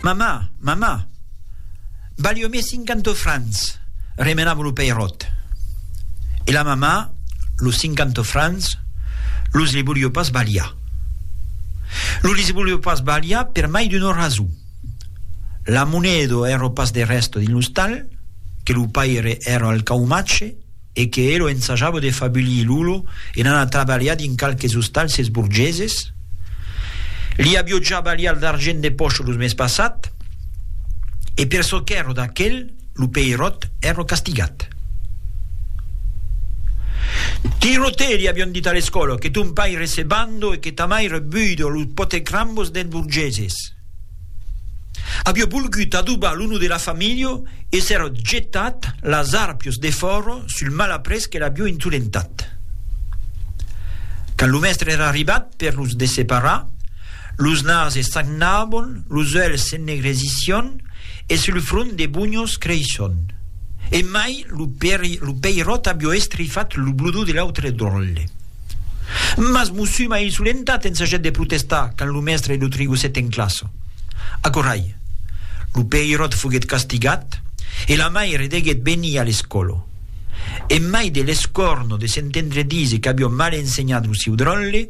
Mamà, mamà, balhomé cinquanta frans, remenam lo peiròt. E la mamà, los cinquanta frans, los li volió pas balhar. Los li volió pas balhar per mai d'una rason. La moneda èra pas de rèsta dins l'ostal, que lo paire èra al caumatge, e que elo ensajava de fabulir Lulo en anar trabalhar dins qualques ostalces borgeses, li avió ja balhat l'argent de pòcha lo mes passat, e per çò qu'èra d'aquel, lo peiròt èra castigat. Tirotè, li avión dit a l'escòla, que ton paire se bando e que ta maire buido los potecrambos dels borgeses. Avió volgut adobar lo no de la familha e s'èra jetat las arpios de fòra sul malaprés que l'avió insolentat. Quand lo mèstre èra arribat per los desseparar, los nases sagnabon, los uèlhs s'ennegresission e sul front de bunhos creisson. E mai lo peiròt avió estrifat lo bludó de l'autre dròlle. Mas m'o sum a insolentat en saget de protestar quand lo mèstre lo trigosset en classa. Aquò ai. Lo peiròt foguet castigat e la maire deguet venir a l'escòla. En mai de l'escòrno de s'entendre díser qu'avió mal ensenhat lo siu dròlle,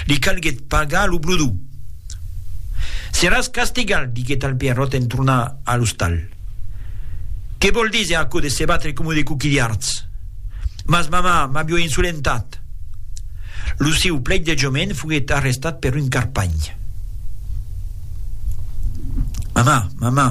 li calguet pagar lo blodó. Seràs castigat, diguet al peiròt en tornar a l'ostal. Que vòl díser aquò de se batre coma de coquilhards? Mas mamà, m'avió insolentat! Lo siu pleidejament foguèt arrestat per un carpanh. Mamà, mamà!